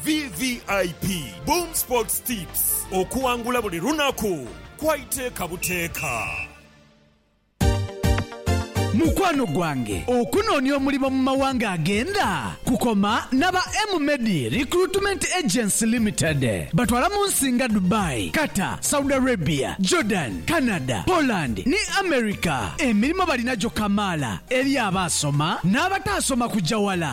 VVIP Boom Sports Tips, Okuwangula buli lunaku kwa iteeka buteeka. Mukwano gwange, okunoonia omulimo mu mawanga agenda kukoma naba M-Medi Recruitment Agency Limited. Batwala mu nsi nga Dubai, Qatar, Saudi Arabia, Jordan, Canada, Poland ni America. Emilimo balina gyo kamaala eri abaasoma n'abataasoma kugya wala.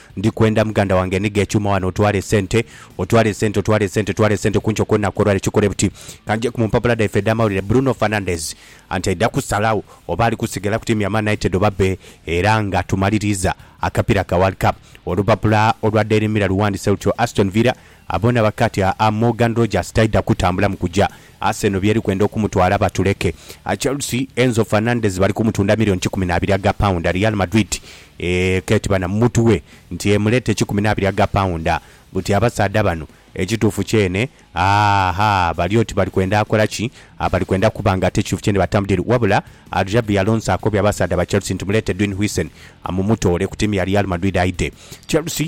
Ndi kwenda muganda wange enhiga ekyuma wano otwale esente otwale esente otwale esente otwale esente kunkyo kwolunaku olwaleero kikole buti kanjeku mumpapula dhaife edhamawulire Bruno Fernandes anti aidha kusalagho oba ali kusigala ku tiimu ya Man United oba bbe era nga tumaliriiza akapira ka world cup olupapula olwa daily mirror luwandise lutyo Aston Villa Abona bake ati aa Morgan Rogers taidha kutambula mu kuja. Arsenal by'eri kwenda okumutwala batuleke. Chelsea, Enzo Fernandez bali kumutunda milioni kikumi n'abiri aga paunda. Real Madrid eeh k'eti bana mutwe nti emuleete kikumi n'abiri aga paunda. Buti abasaadha bano ekituufu kyene aahaa bali oti bali kwenda akola ki? Aa bali kwenda kuba nga ate ekituufu kyene batamudile. Wabula Xabi Alonso akobye abasaadha ba Chelsea nti muleete Edwin Huijsen mumutoole ku tiimu ya Real Madrid aidhe. Chelsea.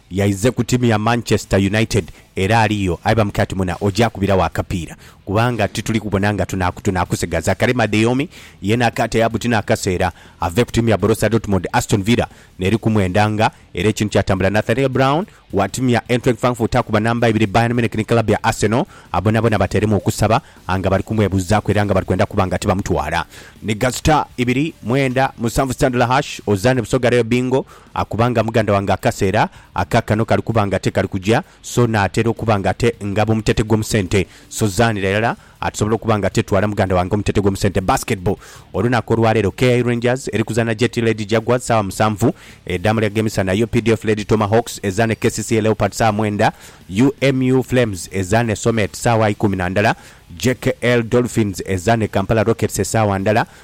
Yaize ku tiimu ya Manchester United era aliyo aye bamukira ati, Muna, ogyakubiragho akapiira kubanga tituli kubona nga tunaakusigaza. Karim Adeyemi yeena akaata ya buti n'akaseera ave ku tiimu ya Borussia Dortmund. Aston Villa n'eri ku mwenda nga era ekintu kyatambula. Nathaniel Brown wa tiimu ya Eintracht Frankfurt akuba namba ibiri Bayern Munich ni club ya Arsenal a bonaboona bateeremu okusaba a nga bali kumwebuzaaku era nga bali kwenda kuba nga tibamutwala. Ni ga star ibiri, mwenda, musanvu Standla Hash, Ozani Busoga Reyo Bingo Akuba nga muganda wange akaseera aka kano kali kuba nga tekali kuja, so naatera okuba nga ate ngaba omutete gw'omu sente. So zaanira irala atusobola okuba nga ate twala muganda wange omutete gw'omu sente. Basketball, Olunaku olwaleero KI Rangers eri kuzaana JT Lady Jaguars saawa musanvu edhaamuli ag'emisana, updf Lady Tomahawks ezaane kcca Leopards saawa mwenda, UMU Flames ezaane Somet saawa ikumi na ndala, JKL Dolphins ezaane Kampala Rockets esaawa ndala,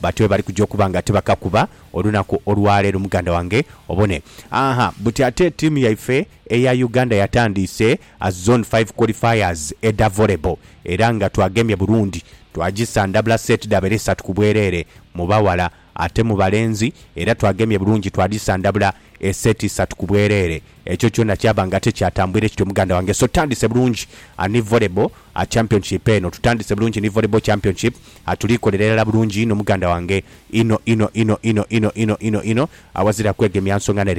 Batyo bwe bali kuja okuba nga tibakakuba olunaku olwa leero muganda wange obone. Ahaa buti ate tiimu yaife eya Uganda yatandiise Zone Five Qualifiers edha Volleyball era nga twagemye Burundi twagisandabula seeti dhabeere isatu ku bwereere mu baghala ate mu balenzi era twagemye bulungi twadhisandabula eseeti isatu ku bwereere. Ekyo kyona kyaba nga tikyatambwire kityo muganda wange, so tutandise bulungi ni volleyball championship eno, tutandise bulungi ni volleyball championship, tuli kolera irala bulungi inho muganda wange, inho inho inho inho inho inho inho inho, awazira kwegemya nsonga ne'rere.